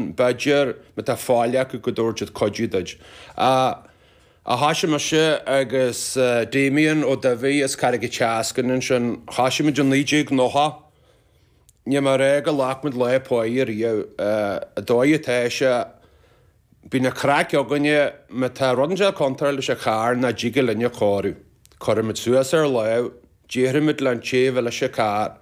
B'fhéidir má tá faill acu go dtabharfaidh siad cuidiú duit. Thoisigh mise agus Damien Ó Dubhthaigh as Carraig an tSeascainn ansin. Thoisigh muid i 1990. Ní mar é go ghlac muid lá páighe riamh. An dóigh atá sé, bíonn an craic againne má tá rud ansin ag dul contráilte leis an charr nach dtig linn a chóiriú. Cuirimid suas ár lámh Déarfaimid leis an té ar leis an carr,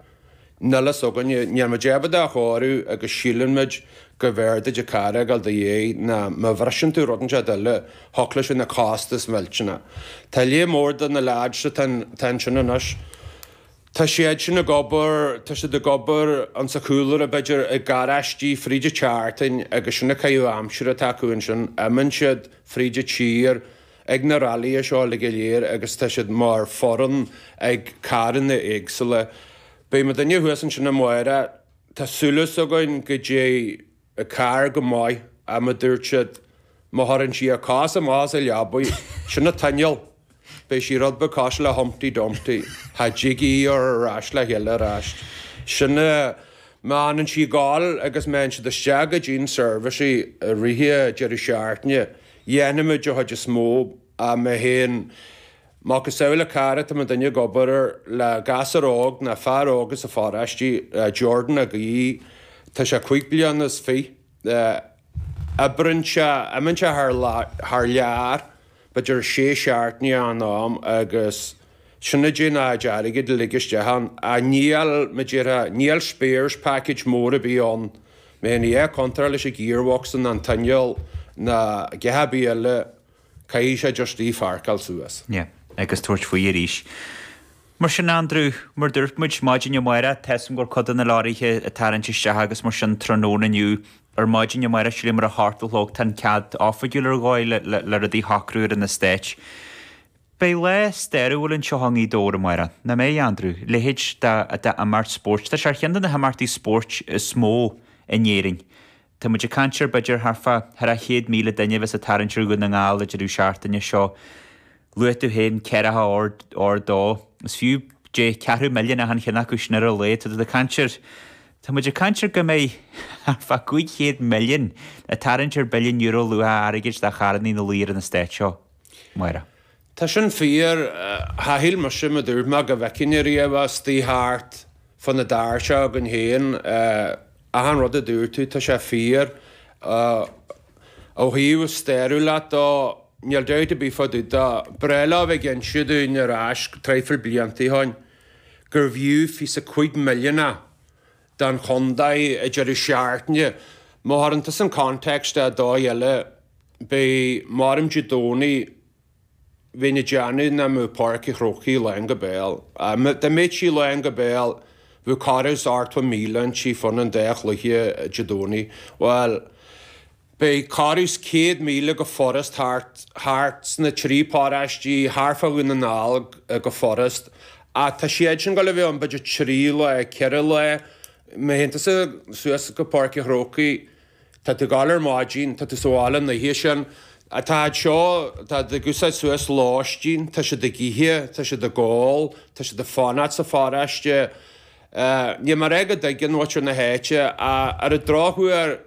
níl a fhios againne, níl muid ábalta a chóiriú agus síleann muid go mb'fhearr duit an carr a fhágáil i do dhéidh nó má bhriseann tú rud inteacht eile thiocfadh leis bheith ina chostas mhillteanach. Tá léar mór de na leaids atá ansin anois. Tá siad sin ag obair, tá siad ag obair insa chúlra b'fhéidir i ngaráistí fríd an tseachtain agus sin an caitheamh aimsire atá acu ansin, imíonn siad fríd an tír, ag na rallia seo uilig go léir agus tá siad mar foireann ag carranna éagsúla. Beidh mo dhuine thuas ansin amárach, tá súil is againn go dtéann an carr go maith ach mar a dúirt siad má chuireann sí a cos amach as an leabaidh, sin an t-inneall, beidh sí rud beag cosúil le Humpty Dumpty, cha dtig í a chur ar ais le chéile ar ais. Sin é, má fhanann sí ag gabháil agus má fhaigheann siad isteach go dtí'n seirbhís i rith deireadh seachtaine, Dhéanfaimid an chuid is mó, mé féin, macasamhail an carr atá mo dhuine ag obair air le gasúr óg nó fear óg as an pharóiste, Jordan Mac Aoidh, tá sé cúig bliana is fiche, oibreann sé, imíonn sé thar lear, b'fhéidir sé seachtainí in am agus sin a dtéann a chuid airgid uilig isteach ann, ach níl, mar a déarfá, níl spares package mór ar bith ann. Má théann a dhath contráilte leis an ghearbox nó an t-inneall nó a dhath ar bith eile caithfidh sé just í a pháirceáil suas. Sea, agus tabhairt faoi arís. Mar sin Andrew, mar a dúirt muid maidin amárach tá 's agam go raibh cuid de na leoraithe ag tarraingt isteach agus mar sin tráthnóna inniu, ar maidin amárach sílim ar a hocht a chlog tá an cead oifigiúil ar dhóigh le le rudaí a shocrú ar an eastát. Beidh lá stairiúil anseo i nGaoth Dobhair amárach. Nach mbeidh, a Andrew. Leithéid d'imeacht spóirt. Tá sé ar cheann de na himeachtaí spóirt is mó in Éirinn. Tá muid ag caint ar b'fhéidir thart fá thar 100,000 duine a bheas ag tarraingt ar Dhún na nGall i rith an deireadh seachtaine seo luaigh tú féin ceithre ha ard dó. Is fiú Dé ceathrú milliúin achan cheann acu sin ar a laghad. Tá tú ag caint ar tá muid ag caint ar go mbeidh thart fá 500 milliún ag tarraingt ar bhilliún euro luach airgid de charrannaí ina luí ar an eastát seo. Máire. Tá sin fíor. Char shíl mise mar a dúirt mé go bhfeicfinn ariamh é istigh thart fá na bhfear seo againn féin. Achan rud a dúirt tú tá sé fíor. Ó thaobh stairiúlacht de, níl dabht ar bith fá dtaobh de, ba bhreá leo bheith ag inse dúinn ar ais traidhfil blianta ó shoin, gurbh fhiú fiche is a cúig milliún don chontae an deireadh seachtaine, má chuireann tú san context ar dóigh eile, beidh maram Dé Domhnaigh bheinn ag déanamh nach mbeadh Páirc Uí Chrócaigh lán go béal. Dá mbeadh sí lán go béal, bheadh corradh is ochtó míle istigh fá choinne an dá chluiche Dé Domhnaigh. Bhuel. Beidh corradh is 100 míle go furast thart, thart sna trí pharóistí thart fá Dhún na nGall go furast. Ach tá siad sin ag gabháil a bheith ann b'fhéidir trí lá, ceithre lá. Má théann tú suas go Páirc Uí Chrócaigh, tá tú ag gabháil ar maidin, tá tú sa bhaile an oíche sin. Tá siad seo, tá siad ag úsáid suas lóistín, tá siad ag ithe, tá siad ag ól, tá siad ag fanacht sa pharóiste. Níl mé ag rá go dtuigeann muintir na háite ach ar an dtráth thuaidh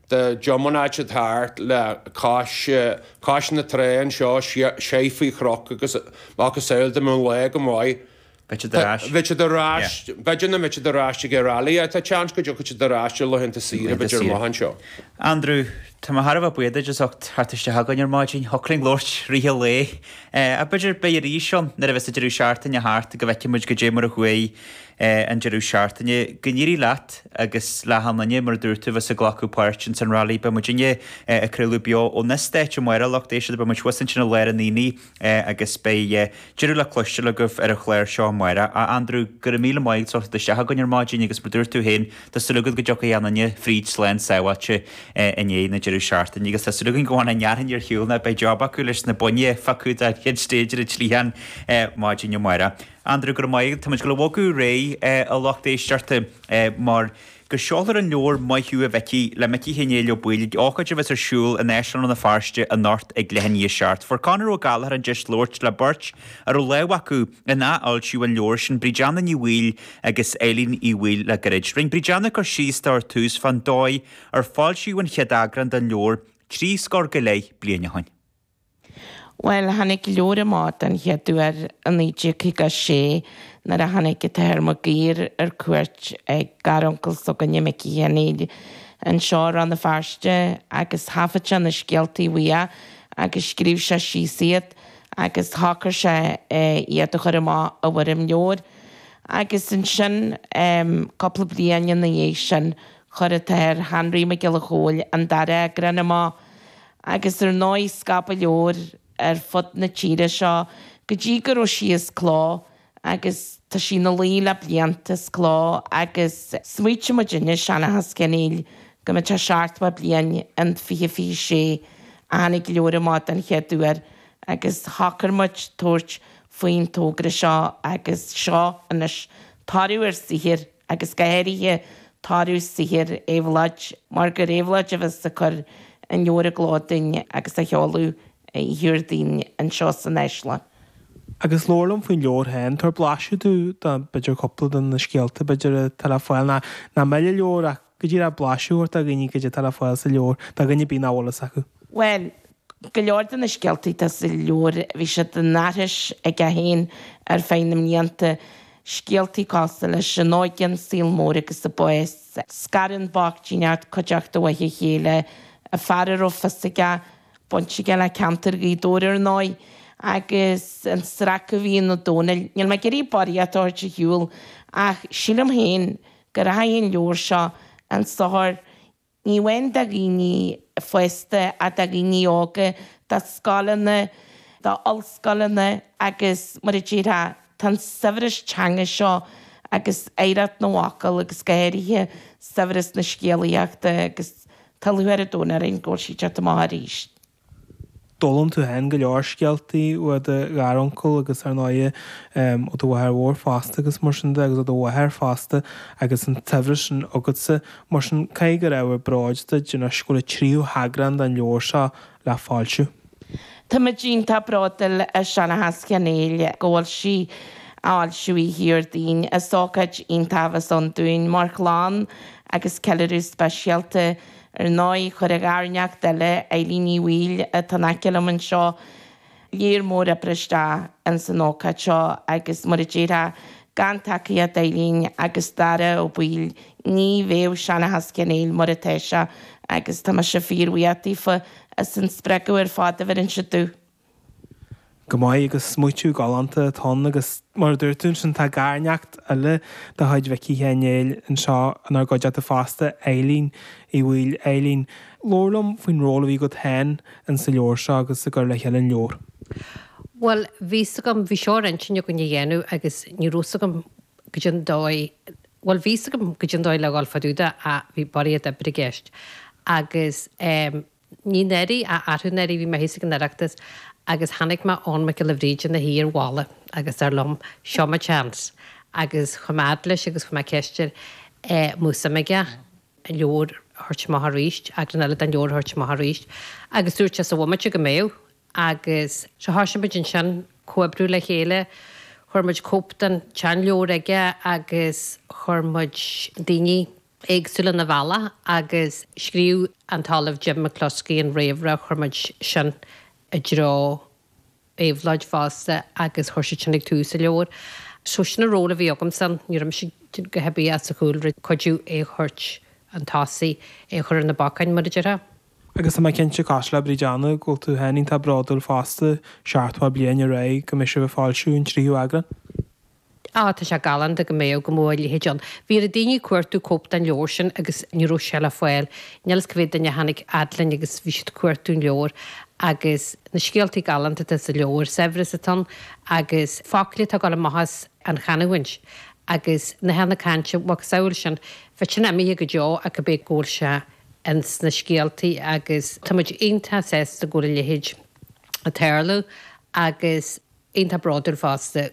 de gem an áit atá thart le cois cois na trá anseo seidh faoi chnoc agus macasamhail dá mbíonn lá go maith. Beidh siad ar ais. Beidh siad ar ais. B'fhéidir nach mbeidh siad ar ais ag an Rally ach tá seans go dtiocfaidh siad ar ais ar laethanta saoire b'fhéidir amach anseo. Andrew, Tá mé thar a bheith buíoch duit as ucht teacht isteach chugainn ar maidin. Thiocfadh linn labhairt i rith an lae. Ach b'fhéidir beidh arís ann nuair a bheas an deireadh seachtaine thart go bhfeicfidh muid cad é mar a chuaigh an deireadh seachtaine. Go n-éirí leat agus le hachan duine, mar a dúirt tú, a bheas ag glacadh páirt ins an Rally. Beidh muidinne ag craoladh beo ón stáitse amárach, a lucht éisteachta. Beidh muid thuas ansin i lár an Aonaigh agus beidh tuilleadh le cloisteáil agaibh ar an chlár seo amárach. A Andrew, go raibh míle maith agat as teacht isteach chugainn ar maidin agus mar a dúirt tú féin, tá súil againn go dtiocfaidh achan duine fríd slán sábháilte i ndiaidh na deireadh seachtaine agus tá súil againn go bhfanfaidh an fhearthainn ar shiúl nó beidh job acu leis na boinn a phiocadh don chéad stage ar an tslichán maidin amárach. Andrew, Go raibh maith agat. Táimid ag gabháil a bhogadh ar aghaidh, a lucht éisteachta, mar go seolfar an leabhar Maith Thú a Mhicí le Micí Sheáin Néill Ó Baoill ag ócáid a bheas ar siúl in Áislann Rann na Feirste anocht ag leath i ndiaidh a seacht. Fuair Conor Ó Gallachóir an deis labhairt le beirt a raibh lámh acu in athfhoilsíú an leabhair sin, Bríd Anna Ní Bhaoill agus Eilín Uí Bhaoill le gairid. Rinne Bríd Anna cur síos dó ar tús fán dóigh ar foilsíodh an chéad eagrán den leabhar trí scór go leith bliain ó shin. Bhuel, tháinig an leabhar amach den chéad uair i 1956 nuair a tháinig an tAthair Mag Uidhir ar cuairt ag garuncail s'againne, Micí Sheáin Néill, anseo i Rann na Feirste agus thaifead sé na scéaltaí uaidh agus scríobh sé síos iad agus shocraigh sé iad a chur amach i bhfoirm leabhair. Agus ansin, cúpla bliain ina dhiaidh sin, chuir an tAthair Anraí Mac Giolla Chomhaill an dara eagrán amach. agus ar ndóigh scaipeadh an leabhar ar fud na tíre seo go dtí go raibh sí as cló agus tá sí ina luí le blianta as cló agus smaoitigh muidinne, Seanchas Sheáin Néill, go mbeadh sé seachtó bliain in 2026 ó tháinig an leabhar amach den chéad uair agus shocair muid tabhairt faoin togra seo agus seo anois toradh ár saothair agus go háirithe toradh saothair Éabhlóid, mar gur Éabhlóid a bheas ag cur an leabhair i gcló duinn agus á sheoladh oíche Dhéardaoin anseo san Áislann. Agus labhair liom faoin leabhar féin. Tabhair blaiseadh dúinn de, b'fhéidir, cúpla de na scéalta, b'fhéidir, atá le fáil, ná mill an leabhar ach. Go díreach blaiseadh a thabhairt do dhaoine goidé atá le fáil sa leabhar, do dhaoine b'fhéidir nach bhfuil fhios acu. Bhuel, go leor de na scéaltaí atá sa leabhar, bhí siad á n-aithris aige féin ar feadh na mblianta, scéaltaí cosúil leis 'An Óige, an Saol Mór agus an Bás' Scarann an bhochtaineacht cuideachta óna chéile, fear a raibh fios aige, baint aige le ceantar Ghaoth Dobhair, ar ndóigh, agus an sracadh a bhí in Ó Domhnaill, níl mé ag iarraidh barraíocht a thabhairt ar shiúl, ach sílim féin Go rachaidh an leabhar seo chun sochair ní amháin do dhaoine fásta ach do dhaoine óga, do scoileanna, d'ollscoileanna agus, mar a déarfá, tá an saibhreas teanga seo agus oidhreacht na bhfocal agus go háirithe saibhreas na scéalaíochta agus tá lúcháir an domhain orainn go bhfuil sí ag teacht amach arís. D'fhoghlaim tú féin go leor scéaltaí ó do gharuncail agus, ar ndóighe, ó do mháthair mhór fosta agus mar sin de, agus ó do mháthair fosta agus an tsaibhreas sin agatsa. Mar sin, caithfidh gur ábhar bróid duit anois go bhfuil an tríú heagrán den leabhar seo le foilsiú. Táimid iontach bródúil as Seanchas Sheáin Néill go bhfuil sí á fhoilsiú oíche Dhéardaoin. Is ócáid iontach a bheas ann dúinn mar chlann agus ceiliúradh speisialta Ar ndóigh, chuir a gharneacht eile, Eilín Ní Bhaoill, atá in aice liom anseo, lear mór oibre isteach ins an ócáid seo agus, mar a déarfá, gan tacaíocht Eilín agus Dara Ó Baoill ní bheadh Seanchas Sheáin Néill mar atá sé agus tá mise fíor-bhuíoch daofa as an spreagadh ar fad a bheireann siad domh. go maith agus smaoitiú galánta atá ann agus mar a dúirt tú ansin tá garneacht eile de chuid Mhicí Sheáin Néill anseo inár gcuideachta fosta, Eilín Ní Bhaoill. Eilín, labhair liom faoin ról a bhí agat féin in sa leabhar seo agus i gcur le chéile an leabhair. Bhuel bhí fhios agam, bhí seo ar intinn againn a dhéanamh agus ní raibh fhios agam goidé an dóigh, bhuel bhí fhios agam goidé an dóigh le dhul fá dtaobh de ach bhí barraíocht oibre i gceist agus eh, Ní anuraidh ach arú anuraidh, bhí mé thíos ag an Oireachtas agus chonaic mé Eoghan Mac Giolla Bhríde ina shuí ar bhalla agus dar liom, seo mo chance. Agus chuaigh mé fhad leis agus chuir mé ceist air, eh, an mbeadh suim aige, an leabhar a thabhairt amach arís, eagrán eile den leabhar a thabhairt amach arís. Agus dúirt sé, sa bhomaite go mbeadh. Agus so thoisigh muid ansin comhoibriú le chéile, chuir muid cóip den tseanleabhar aige agus chuir muid daoine éagsúla 'na bhaile agus scríobh an tOllamh Jim McCloskey an réamhrá, chuir muid sin i dtreo Éabhlóid fosta agus chuir siad sin ag tús an leabhair. So sin an ról a bhí agamsa ann. Ní raibh mise ach ag obair ins an chúlra, cuidiú é a thabhairt chun tosaigh, é a chur ar na bacáin, mar a déarfá. Agus tá mé cinnte, cosúil le Bríd Anna, go bhfuil tú féin iontach bródúil fosta, seachtó bliain ar aghaidh go mbeidh sibh ag foilsiú an tríú eagrán. Á, tá sé galánta go mbeadh, go mbeadh a leithéid ann. Bhí lear daoine ag cuartú cóip den leabhar sin agus ní raibh sé le fáil. Níl fhios cé mhéad duine a tháinig fhad linn agus bhí siad ag cuartú an leabhar agus na scéaltaí galánta atá sa leabhar, saibhreas atá ann agus focla atá ag gabháil amach as an chanamhaint agus nathanna cainte, macasamhail sin, bheadh sin imithe go deo ach go bé go bhfuil sé ins na scéaltaí agus tá muid iontach sásta go bhfuil a leithéid ag tarlú agus iontach bródúil fosta.